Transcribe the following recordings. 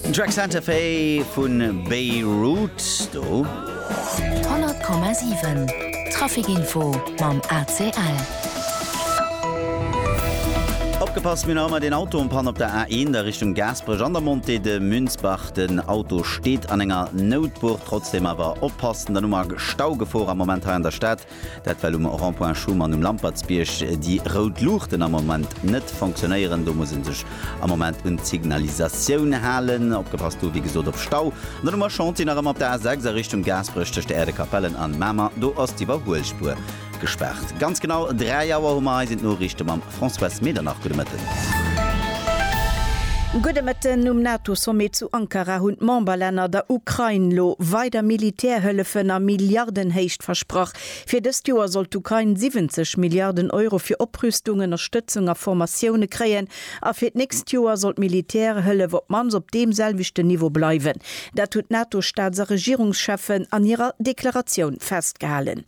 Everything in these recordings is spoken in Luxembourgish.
Den Track Santa Fe vu Beirut do. 100,7 Trafikinfo mam ACL. Opgepasst, mir hu nach ëmmer deen Auto en Panne op der A1 a Richtung Gaasperech an der Montée de Münzbach. Den Auto steet an enger Noutbur. Trotzdeem awer oppassen, dann hu mer Staugefor am Moment hei an der Stad. Dat well um Rond-point Schuman um Lampertsbierg déi rout Luuchten am Moment net fonctionnéieren. Do muss ee sech am Moment un d'Signalisatioun halen. Opgepasst do wéi gesot op Stau. An dann hu mer Chantier nach ëmmer op der A6 a Richtung Gaasperech tëscht der Äerdekapellen an Mamer. Do ass d'Iwwerhuelspuer gespaart. Ganz genau 3 Auer hu mer eis. D'Noriichte mam. Françoise Medernach, Gudde Mëtten. Gudde Mëtten. Um NATO-Sommet zu Ankara hunn d'Memberlänner der Ukrain lo weider Militärhëllefen a Milliardenhéicht versprach. Fir dëst Joer soll d'Ukrain 70 Milliarden Euro fir Oprüstung, Ënnerstëtzung a Formatioune kréien a fir d'nächst Joer soll d'Militärhëllef op d'mannst op deem selwechten Niveau bleiwen. Dat hunn d'NATO-Staats a Regierungscheffen an hirer Deklaratioun festgehalen.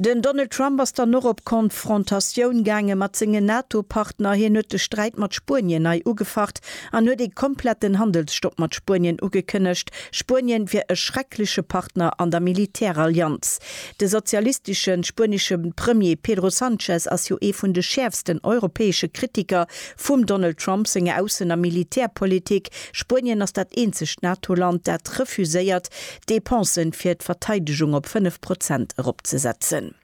Den Donald Trump ass dann och op Konfrontatioun gaange mat sengen NATO-Partner. Hien huet de Sträit mat Spuenien nei ugefacht an huet ee kompletten Handelsstopp mat Spuenien ugekënnegt. Spuenien wier e schreckleche Partner an der Militärallianz. De sozialistesche spuenesche Premier Pedro Sanchez ass jo ee vun de schäerfsten europäesche Kritiker vum Donald Trump senger Aussen a Militärpolitik. Spuenien ass dat eenzegt NATO-Land, dat refuséiert, d'Dépensen fir d'Verteidegung op 5 Prozent eropzesetzen.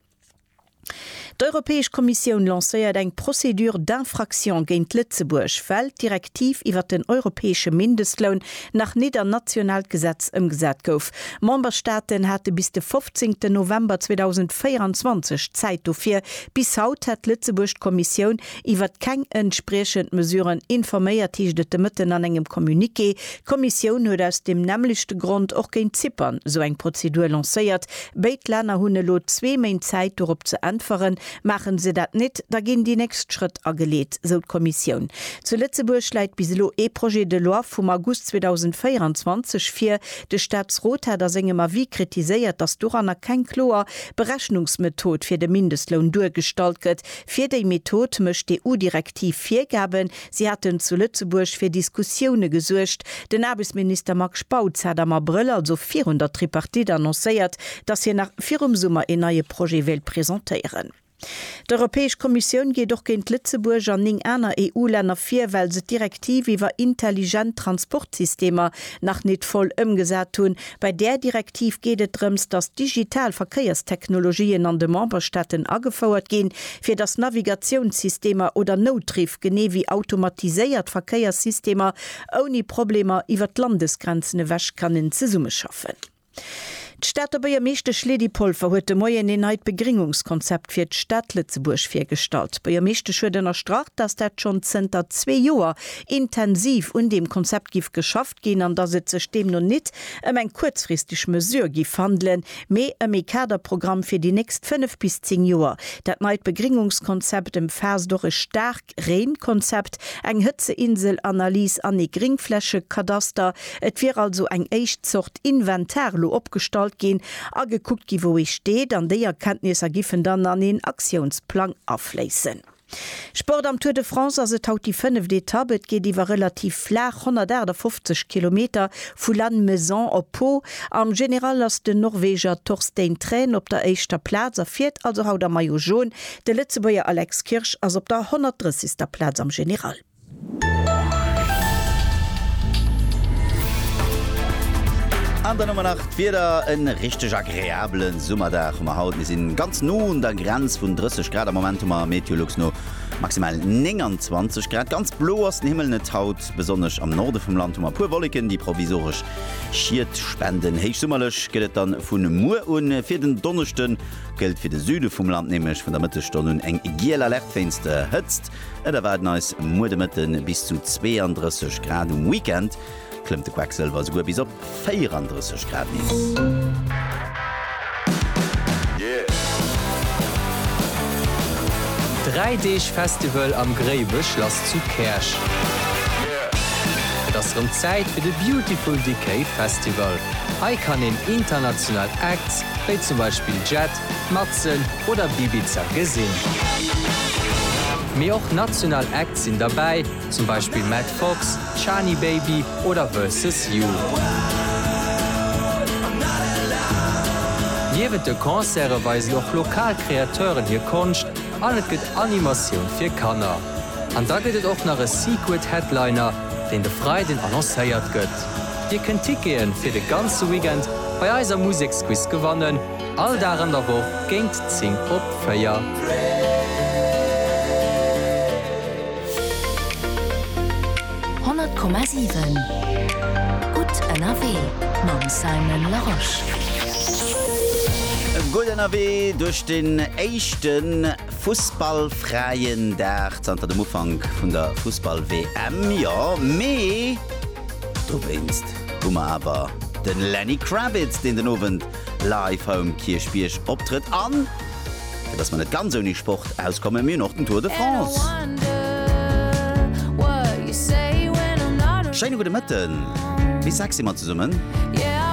D'Europäesch Kommissioun lancéiert eng Procédure d'infraction géint Lëtzebuerg, well d'Direktiv iwwert den europäesche Mindestloun nach nit an nationaalt Gesetz ëmgesat gouf. Memberstaaten hate bis de 15 November 2024 Zäit dofir. Bis haut hat Lëtzebuerg d'Kommissioun Iwwert keng entspriechend Mesuren informéiert, heescht et de Mëtten an engem Communiqué. D'Kommissioun huet aus deem nämmlechte Grond och géint Zypern esou eng Prozedur lancéiert. Béid Länner hunn elo zwee Méint Zäit dorop ze äntweren. Maachen se dat nit, da ginn déi nächst Schrëtt ageleet, sou d'Kommissioun. Zu Lëtzebuerg läit bis elo ee Projet de loi vum August 2024 vir. De Staatsrot hat a sengem Avis kritiséiert, datt doranner keng kloer Berechnungsmethod fir de Mindestloun duergestallt gëtt. Fir déi Method mécht d'EU-Direktiv Virgaben. Si haten zu Lëtzebuerg fir Diskussioune gesuergt. Den Aarbechtsminister Marc Spautz hat am Abrëll, also virun der Tripartite, annoncéiert, datt hien nach virum Summer een neie Projet wéilt presentéieren. D'Europäesch Kommissioun geet och géint Lëtzebuerg an néng aner EU-Länner vir, well se d'Direktiv iwwer intelligent Transportsystemer nach nit voll ëmgesat hunn. Bei där Direktiv geet et drëms, datt digital Verkéierstechnologien an de Memberstaaten agefouert ginn, fir datt Navigatiounssystemer oder Noutriff, genee wéi automatiséiert Verkéierssystemer, ouni Problemer iwwert d'Landesgrenzen ewech kënnen zesummeschaffen. D'Stater Buergermeeschtesch Lydie Polfer huet de Moien een neit Begringungskonzept fir d'Stad Lëtzebuerg virgestallt. D'Buergermeeschtesch huet ënnerstrach, datt dat schonn zënter zwee Joer intensiv un deem Konzept giff geschaff ginn an dass et sech deemno nit ëm eng kuerzfristeg Mesure giff handelen, mee ëm ee Kaderprogramm fir déi nächst fënnef bis zéng Joer. Dat neit Begringungskonzept ëmfaasst och e Staarkreenkonzept, eng Hëtzeinsel-Analys an ee Gringflächekadaster. Et wier also eng éischt Zort Inventar elo opgestallt ginn a gekuckt gi wou ee steet an déi Erkenntnisser giffen dann an een Aktiounsplang afléissen. Sport Am Tour de France ass et haut déi fënneft Etapp. Et geet iwwer relativ flaach 158 Kilometer vu Lannemezan op Pau. Am General ass den Norweger Torstein Træn op der éischter Plaz a fiert also haut am Maillot Jaune. De Lëtzebuerger Alex Kirsch ass op der 130. Plaz am General. An dann hu mer nach d'Wieder, e richteg agreabele Summerdag hu mer haut. Mir sinn ganz no un der Grenz vun 30 Grad. Am Moment hu mer Meteolux no maximal 29 Grad. Ganz blo ass den Himmel net haut. Besonnesch am Norde vum Land hu mer e puer Wolleken, déi provisoresch Schied spenden. Héichsummerlech gëtt et dann vun muer un. Fir den Donneschde gëllt fir de Süde vum Land nämlech vun der Mëttesstonn un eng giel Alerte wéinst der Hëtzt. Et erwaarden eis muer de Mëtte bis zu 32 Grad, um Weekend klëmmt de Quacksilver esouguer bis op 34 Grad nees. Dräi Deeg Festival am Gréiwechlass zu Käerch. Et ass rëm Zäit fir de Beautiful Decay Festival. Hei kann een international Acts, wéi zum Beispill Jet, Matzen oder Bibiza gesinn. Mee och national Acts sinn derbäi, zum Beispill Matt Fox, Chani Baby oder Versus You. Niewent de Concerte weisen och lokal Kreateuren hir Konscht an et gëtt Animatioun fir Kanner. An da gëtt et och nach e Secret Headliner, deen de Freiden annoncéiert gëtt. Dir kënnt Tickete fir de ganze Weekend bei eiser Museksquiz gewannen. All Dag an der Woch géint 10 op 4. Honnert Komma siwen, gutt ënnerwee mam Simon Larosche. Gutt ënnerwee duerch den éischte fussballfräien Dag zanter dem Ufank vun der Fussball-WM. Jo, mee dowéinst hu mer awer de Lenny Kravitz, deen den Owend live home Kierchbierg optrëtt an fir dass mer net ganz ouni Sport auskomme mir hunn och den Tour de France. Schéine gudde Mëtten, bis 6 si mer zesummen.